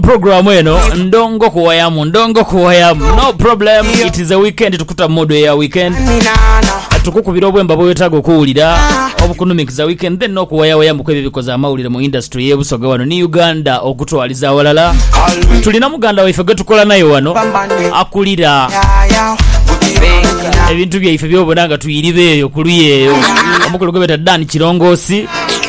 program eno ndongo kuwayamu ndongo kuwayamu no problem it is a weekend tukuta mood eya weekend tukukubira obwemba bwewetaga okuwulira obukunuminkiza weekend then nokuwayawayamuku ebyo bikoze amawulire mu industry yebusoga wano ni uganda okutwaliza awalala tulina muganda waife gwetukola naye wano akulira ebintu byaife byobona nga tuyiriba eyo kuluya eyo omukulu gwebeta dan kirongosi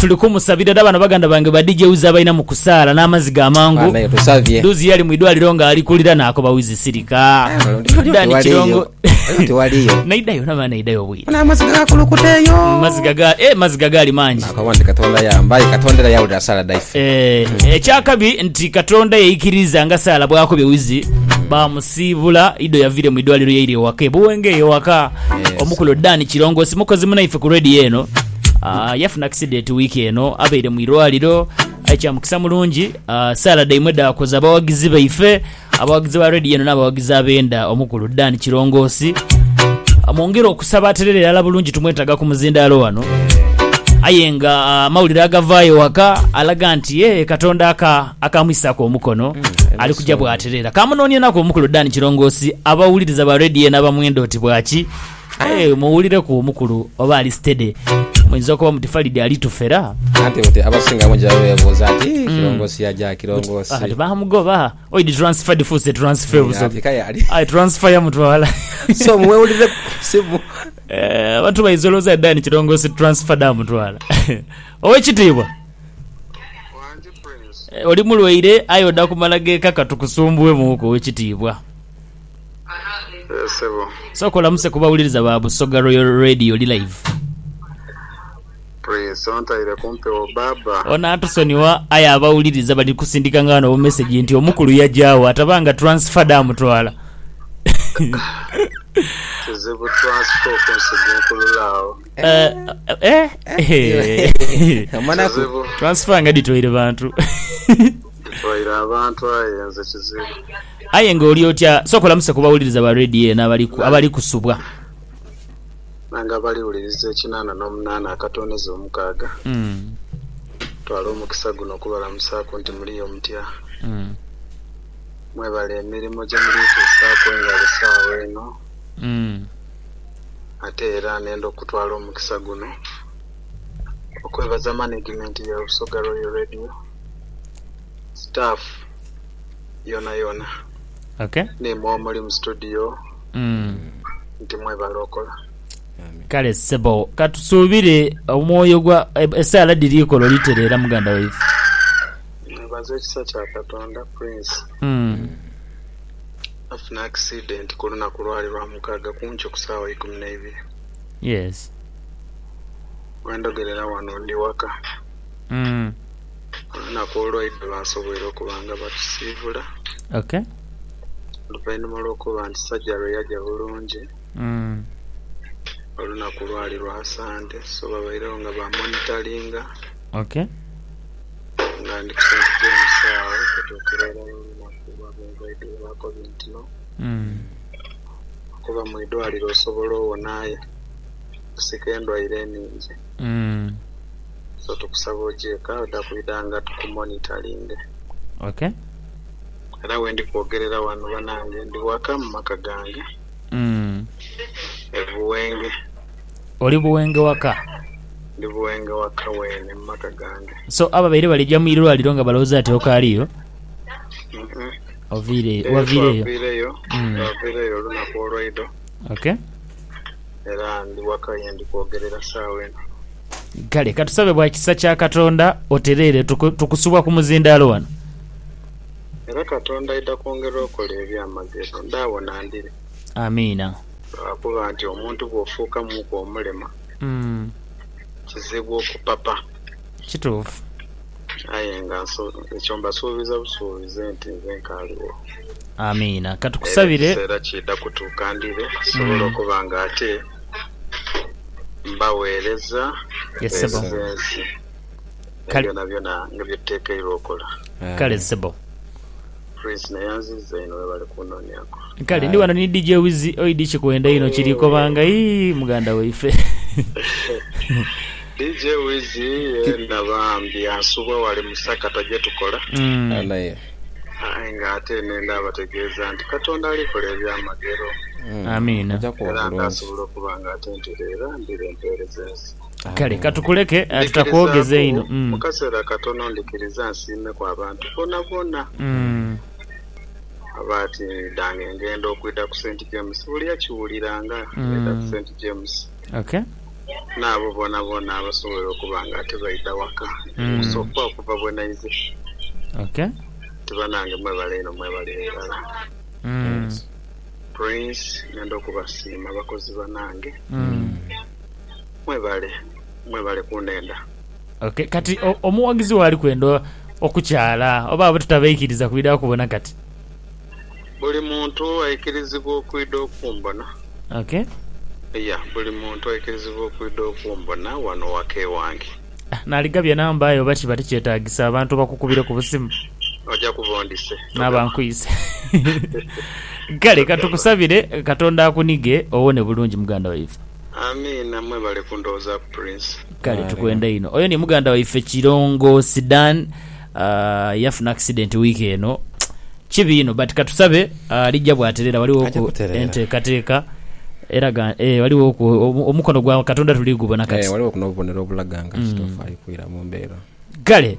Tuli kumusabira era bano baganda bange ba DJ Wiz abalina mu kusaala n'amazzi ga mangu. Duuzi yali mu idwaliro nga ali kulira naakoba Wiz sirika. Dani Kirongo. Naida yona bana naida yobwire. Amazzi gakulukuteyo. Amazzi gaga eh amazzi gagali mangi. Akawandi Katonda yambaye Katonda era yawulira saala daife. Eh ekyakabi nti Katonda yeyikiriza nga saala bwakobye Wiz bamusa Siibula Ido yaviire mu idwaliro yaira ewaka e Buwenge eyo ewaka omukulu Dan Kirongosi mukozi munaife ku Radio eno yafuna akisidenti wiiki eno abaire mu irwaliro aye kya mukisa mulungi saala dhaimwe dhaakoza abawagizi baife abawagizi ba Radio eno n'abawagizi ab'enda omukulu Dan Kirongosi mwongere okusaba aterere irala bulungi tumwetaaga ku muzindaalo wano aye nga amawulire agavaayo ewaka alaga nti yee Katonda aka Akaamwisisaku omukono ali kuja bw'atereera. Kaamunoonyenaku omukulu Dan Kirongoosi abawuliriza ba Radio eno abamwenda oti bwaki. Aye muwulireku omukulu oba ali steady. Muyinza okuba muti Falidi ali tufera. Anti buti abasinga bungi baba beebuuza nti, Kirongoosi yaja? Kirongoosi. Kati baamugoba. Oyi di transfer difuuse transfer Ati busobi. kaya ali. Aye transfer yamutwala. So mwewulireku ku simu. Eh, abantu bayinza olowooza Dan Kirongoosi transfer dhaamutwala. Ow'ekitiibwa. Oli mulwaire aye oda kumala gekaka tukusumbue muku owekitiibwa. Sooka olamuse kubawuliriza ba Busoga Royal Radio oli live. Onatusonyiwa aye abawuliriza bali kusindika nga wano obumessage nti omukulu yajaawo ataba nga transfer damutwala. Kizibu transfer okunsigunkulula awo. Eh, eh, eh. Omanaku. Kizibu. transfer nga dhitwaire bantu Bitwaire abantu aye nze kizibu. aye nga oli otya sooka olamuse ku bawuliriza ba radio eno abali ku- abali kusubwa Nange abaliwuliriza ekinaana n'omunaana akatooneza omukaaga. Mm, Twala omukisa guno okubalamusaaku nti muliyo mutya. mm, Mwebale emirimu gye muli tuusaaku engalo saawa eno. mm. ate era nenda okutwala omukisa guno okwebaza manegimenti ya Busoga Royal Radio, sitaafu yonayona n'imwe omuli mu situdiyo nti mwebale okola. Kale ssebo, ka tusuubire omwoyo gwa esaala dhiri ikola olitereera muganda waife. Mwebaze ekisa kya Katonda Prince. Nafuna accident kulunaku lwali lwamukaga kunkyo kusaawa ikumi naibiri. Yes. Wendogerera wano ndi waka. Olunaku olwaidha basoboire okuba nga batusiibula. Okay. Oluvainhuma lwokuba nti surgery yaja bulungi, olunaku lwali lwa sande so babairegho nga ba monitoringa. Okay. Nga ndi ku St James agho okutuukira olwalwo olunaku. Bw'oba mu ndwaire baako bintu no kuba mu idwaliro osobola owona aye okusika endwaire ningi so tukusaba oje eka oda kwidha nga tukumonitalinge. Era wendi kwogerera wano banange ndi waka mu maka gange e Buwenge. Oli Buwenge waka? Ndi Buwenge waka wene mu maka gange. So ababaire balija mu irwaliro nga balowoza nti okaaliyo? Twaviireyo olunaku olwaidho era ndi waka ye ndi kwogerera saagha eno. Kale katusabe bwa kisa kya Katonda otereere tukusubwa ku muzindaalo wano. Era Katonda aidha kwongera okola ebyamagero ndi agho na ndiri. Amiina. Lwakuba nti omuntu bw'ofuuka muuku omulema, kizibu okupapa. Kituufu. Aye nga ekyo mbasuubiza busuubizi nti nze nkaaliwo. Amiina. Ka tukusabire. Era ekiseera kiidha kutuuka ndire nsobole okuba nga ate mbagheereza gheza ensi ne byonabyona bye tutekeirwa okola. Kale sebo. Prince naye anziza inho webale kunonyaku. Kale ndi wano ni DJ Wizzy oi di kikwenda inho kiri kobanga ii muganda waife. DJ Wizzy yena bambi ansubwa wale musakata gyetukola. Amen. Aye nga ate nenda bategeeza nti Katonda alikola ebyamagero. Amiina. Era nga asobola okuba nga atentereera ndire empeereza ensi. Kale ka tukuleke, tutakwogeza inho. Ndhikirizaaku mu kaseera katono, ndhikiriza nsiimeku abantu boonaboona abaatidhanga enghendo okwidha ku St. James. Buli eyakiwulira nga ng'enda ku St. James, n'abo boonaboona abasobwoire okuba nga tibaidha waka kusooka okuva bwe naize, nti banange mwebale inho, mwebale irala. Prince, ngenda okubasiima bakozi banange. Mwebale, mwebale kundhenda. Ok kati omuwagizi wo ali kwenda okukyala oba abo tutabaikiriza kwidha kubona kati? Buli muntu aikirizibwa okwidha okumbona. Ok. Iya buli muntu aikirizibwa okwidha okumbona wano waka ewange. Ah naligabye namba aye oba kiba tikyetagisa abantu bakukubire ku busimu? Oja kuba ondhise. Naba nkwise. Kale katukusabire katonda akunige owone bulungi muganda waife. Amiina mwebale kundhoozaku Prince. Kale tukwenda inho. Oyo ni muganda waife Kirongo Sidan yafuna accident week eno kibi inho but katusabe alija bwaterera waliwo ku entekateka eraga ee waliwo ku omukono gwa katonda tuli gubona kati. Kale.